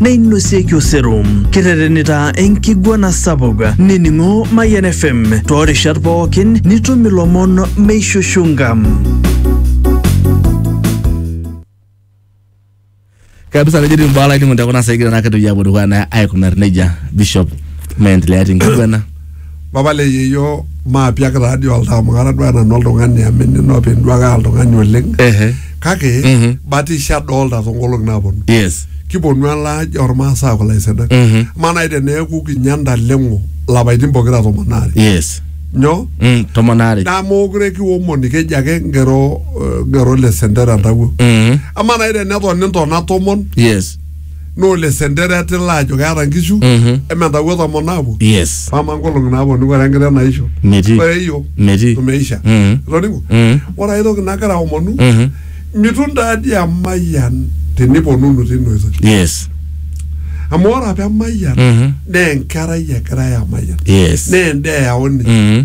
neinosieki osero. Kiterenita enkiguana sapuk nining'o Mayian FM toorishat pookin nitum ilomon meishushunga. kabisa nejeti mbaa lainingo tekuna saikira naa kitoki apuo dukuya naa aikunar nejia bishop meendelea tenkiguana Papa le yeyio maapiak taa dii oltaa amu kara duo nanu oltung'ani amu enino openy duo ake aa oltung'ani oleng Ehe. kake Mhm. batisho adolta toonkolong'i naaponu Yes. kiponu elaaji ormaasai aaku ilaisinak Mhm. amaa naaji teneeku kinya ntaleng'o lapaitin pokira tomon aare Yes. nyoo Mm, tomon aare. naa mookure kiomoni keji ake ngero eh, ngero le sentera ntawuo Mhm. amaa naaji tenetoni ntona tomon Yes. naa ole sentero etila ajo keeta nkishu Mhm. eme ntawuo tomon naapuo yes pama nkolong'i naaponu ore enkiteng naisho Metii. ore iyiok Metii. tumeisha Mhm. itoning'o Mhm. ore ai toki nagira aomonu Mhm. mitum taadi emayian teniponunu tina oitoi yes amu ore apa emayian Mhm. naa enkerai egirae amayian yes naa endaa eyauni Mhm.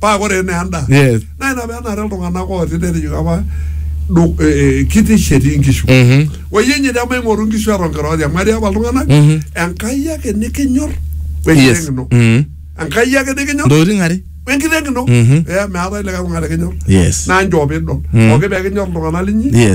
paa ore enaa endaa Yes. naa ina pee enare iltung'anak ooti netejoki apa du- eh, eh, kitish etii nkishu Mhm. oyie inye te maing'oru nkishu eton kira oti amu etii apa iltung'anak Mhm. enkai ake nikinyor wenkiteng Yes. ino Mhm. enkai ake nikinyor Ntokitin are. wenkiteng ino Mhm. Eh, meetae likae tung'ani likinyor Yes. naa njoo piidol Mhm. pooki pee kinyor iltung'anak linyi Yes.